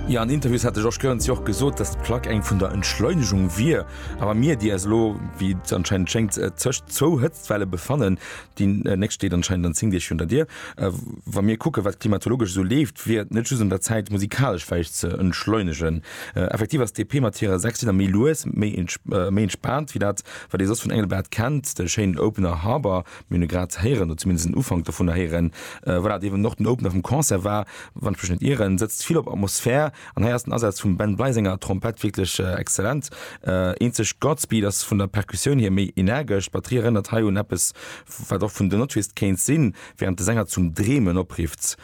Jo, an Interviews hat de Georges Goerens jo och gesot, datt d'Plack eng vun der Entschleunegung wier. Awer mir, déi eis elo, wéi et anscheinend schéngt, tëscht zwou Hëtztwelle befannen, déi nächst steet anscheinend an 10 Deeg hünter Dier, wa mir kucken, wat klimatologesch esou leeft, wier et net just un der Zäit, musikalesch vläicht ze entschleunegen. Effektiv ass d'EP mat hirer sechs Lidder méi lues, méi entspaant wéi dat, wat ee soss vun Engelbert kennt, de schéinen Opener Harbor. Mir hunn e grad héieren, oder zumindest den Ufank dovunner héieren, voilà, dee wou och den Opener vum Concert war, wann ech mech net ieren, setzt vill op Atmosphär an hei ass den Asaz vum Ben Bly senger Trompett wierklech exzellent. Eenzeg Godspeed ass vun der Perkussioun hier méi energesch, d'Batterie erënnert hei un eppes, wat och vun The Notwist kéint sinn, wärend de Sänger zum Dreemen oprifft.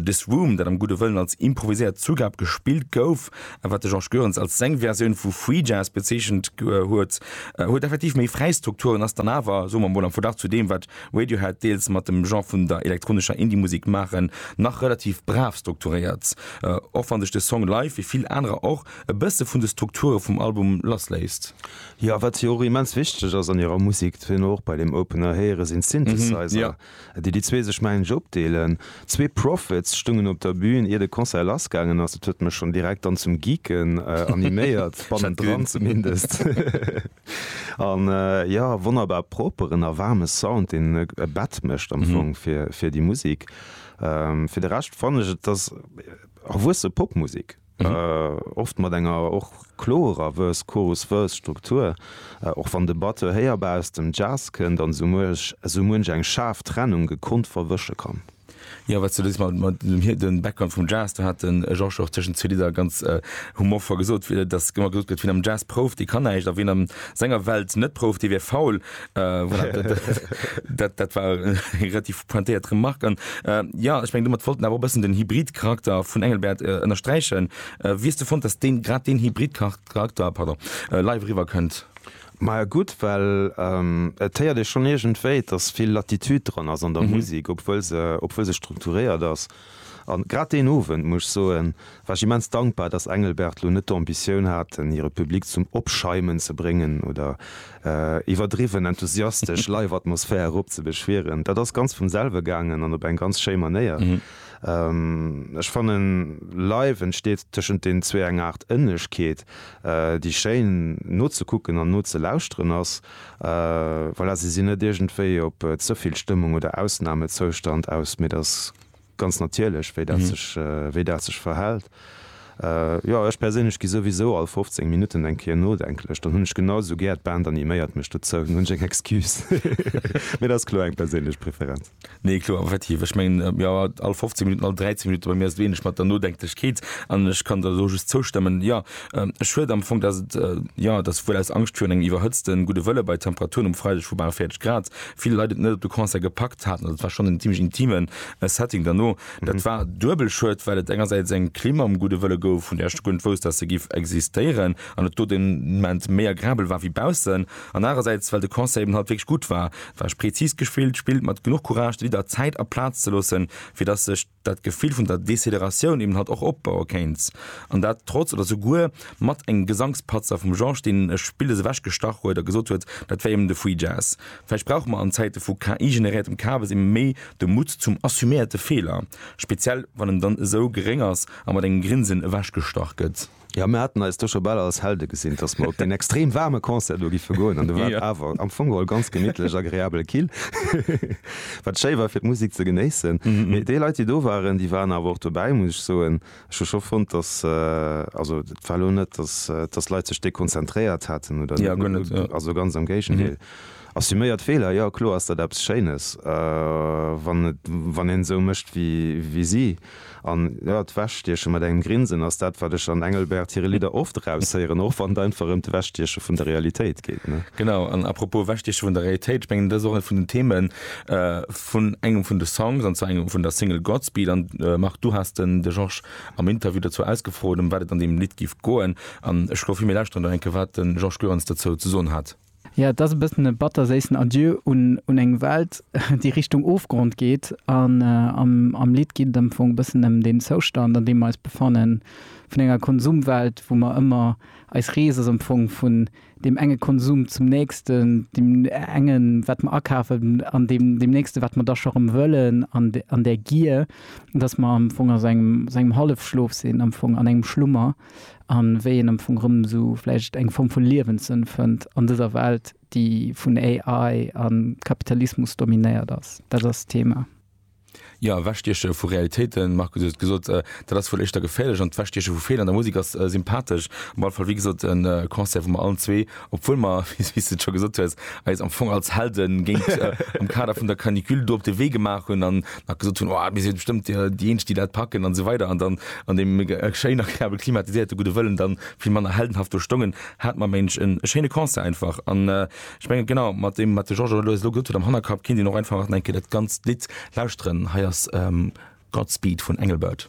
This Room, dat am gudde Wëllen als improviséiert Zugab gespillt gouf, a wat de Georges Goerens als seng Versioun vu Free Jazz bezeechent huet, huet effektiv méi fräi Strukturen, ass dann awer, soe mer mol, am Verglach zu deem, wat Radiohead deels mat dem Genre vun der elektronescher Indie-Musek maachen, nach relativ brav strukturéiert, och wann sech de Song live, wéi vill anerer och, e bësse vun de Strukture vum Album lassléisst. Jo, wat jo och immens wichteg ass an hirer Musek, dat huet een och bei deem Opener héieren, sinn d'Synthesizer. déi déi zwee sech mengen ech opdeelen. Zwee Prophets stungen op der Bühn ier de Concert lass gaangen ass. Dat huet mech schonn direkt dann zum Geeken animéiert, bannendran zumindest. An jo, wonnerbar properen a waarme Sound, deen e Bett mécht am Fong fir déi Musik. Fir de Rescht fannen ech et ass erwuesse Popmusik. oft mat enger och klorer Verse-Chorus-Verse-Struktur, och wann de Batteur héierbar aus dem Jazz kënnt an esou muench eng schaarf Trennung gekonnt verwësche kann. Jo, wat s de do sees mat dem hir, den Background vum Jazz, do hat den Georges och tëschent zwee Lidder ganz humorvoll gesot, dass ëmmer gesot gëtt, wien am Jazz prouft, dee kann näischt, a wien a senger Welt net prouft, dee wär faul. Äh, voilà, dat, dat, dat, dat war eng relativ pointéiert Remark an äh, ja ech meng domat wollten awer bëssen den Hybridcharakter vun Engelbert äh, ënnersträichen. Äh, äh, wies du fand, dass den grad den Hybridcharakter pardon äh, live riwer kënnt? Ma ja gutt, well ähm, et héiert ee schonn iergendwéi, dass vill Latitude dran ass an der mhm. Musik, obwuel se, obwuel se strukturéiert ass. An grad deen Owend, muss ech soen, war ech immens dankbar, dass Engelbert lo net d'Ambitioun hat, den hire Public zum Opschäumen ze bréngen oder iwwerdriwwen enthusiastesch Live-Atmosphär eropzebeschwieren. Dat ass ganz vum selwe gaangen an op eng ganz schéi Manéier. Ech fannen, live entsteet tëschent den zwee eng Aart Ënnegkeet, déi schéin nozekucken an nozelauschteren ass. Voilà, se sinn net iergendwéi op ze vill Stëmmung oder Ausnamezoustand aus, mee et ass ganz natierlech, wéi dat sech, wéi dat sech verhält. Jo, ech perséinlech gi souwisou all 15 Minutten eng Kéier nodenklech, dann hunn ech genau esou gär, d'Band animéiert mech dozou, dann hunn ech eng Excuse. Mee dat ass kloer eng perséinlech Preferenz. Nee kloer, effektiv. Ech mengen jo, all 15 Minutten, all 13 Minutte, bei mir ass et wéineg mat der Nodenklichkeet an ech kann der do just zoustëmmen. Jo, e Schued am Fong, datt et, jo, datt wuel aus Angscht virun engem iwwerhëtzten Gudde Wëlle bei Temperaturen um Freideg vu bal 40 Grad vill Leit et net op de Concert gepackt haten. Also et war schonn en zimmlech intimen Setting derno. Dat war duebel schued, well et engersäits eng Klimm am Gudde Wëlle gouf, vun där ech de Grund wousst, datt se giff existéieren an et do den Ment méi agrabel war wéi baussen. An anerersäits, well de Concert eben halt wierklech gutt war. Et war prezis gespillt, spillt mat genuch Courage de Lidder Zäit a Plaz ze loossen, fir datt sech dat Gefill vun der Deceleratioun eben halt och opbaue kéint. An dat trotz oder souguer mat engem Gesangspatzer vum Georges, deen e Spilles ewechgestach huet a gesot huet, dat wär eben de Free Jazz. Vläicht brauche mer an Zäite vu KI-generéiertem Kabes eben méi de Mutt zum assuméierte Feeler, speziell wann en dann esou geréng ass a mat engem Grinsen ewechgestach gëtt. Ja, mir haten eis do scho bal als Helde gesinn, dass mer op deen extrem waarme Concert do giffe goen. An do war et awer am Fong geholl ganz gemittlech, agreabel kill, wat schéi war, fir d'Musek ze genéissen. Mee déi Leit, déi do waren, déi waren awer och dobäi, muss ech soen. Ech hu scho fonnt, dass, also et war elo net, dass, dass d'Leit sech dekonzentréiert haten oder net, also ganz am Géigendeel. Assuméiert Feeler, jo, kloer ass dat eppes Schéines, wann, wann een esou mécht wéi si. An jo, d'Wechstieche mat engem Grinsen ass dat, wat ech an Engelbert hire Lidder oft eraushéieren, och wann et einfach ëm d'Ewechstieche vun der Realitéit geet, ne? Genau, an apropos Ewechstieche vun der Realitéit, ech mengen dat ass och ee vun den Theme vun engem vun de Songs, an zwar engem vun der Single Godspeed. An Marc, du has den de Georges am Interview dozou ausgefrot, ëm wat et an deem Lidd géif goen. An ech schloe vir, mir lauschteren do eng Kéier, wat de Georges Goerens dozou ze soen hat. Jo, et ass e bëssen e batterséissen Adieu un eng Welt, déi Richtung Ofgrond geet. An am Lidd geet et am Fong e bëssen ëm deen Zoustand, an deem mer eis befannen, vun enger Konsumwelt, wou mer ëmmer, eis Rees ass am Fong vun deem enge Konsum zum nächsten, deem engen, wat mer akafen, an deem nächsten, wat mer da scho rëm wëllen, an där Gier, dass mer am Fong a sou engem Hallefschlof sinn, am Fong an engem Schlummer. a wéi een am Fong erëm esou vläicht eng Form vu Liewenssënn fënnt an dëser Welt, déi vun AI a Kapitalismus dominéiert ass. Dat ass d'Thema. Jo, ewechstieche vu Realitéiten, Markus, hues et gesot, dat ass wuel éischter geféierlech, an d'Ewechstieche vu Feeler an der Musek ass sympathesch. Op alle Fall, wéi gesot, e Concert, wou mer allen zwee Obwuel mer, wéi s de et scho gesot hues, eis am Fong als Helde géint am Kader vun der Canicule do op de Wee gemaach hunn an nach gesot hunn, oh, mir si bestëmmt déi Eenzeg, déi dat packen an esou weider an dann an deem schéin agreabel klimatiséierte Gudde Wëllen dann vill manner heldenhaft do stongen, hate mer mensch e schéine Concert einfach. An ech mengen, genau mat deem, wat de Georges elo elo gesot huet am Hannerkapp, kéint een och einfach nach eng Kéier dat ganzt Lidd lauschteren. Hei ass Godspeed vun Engelbert.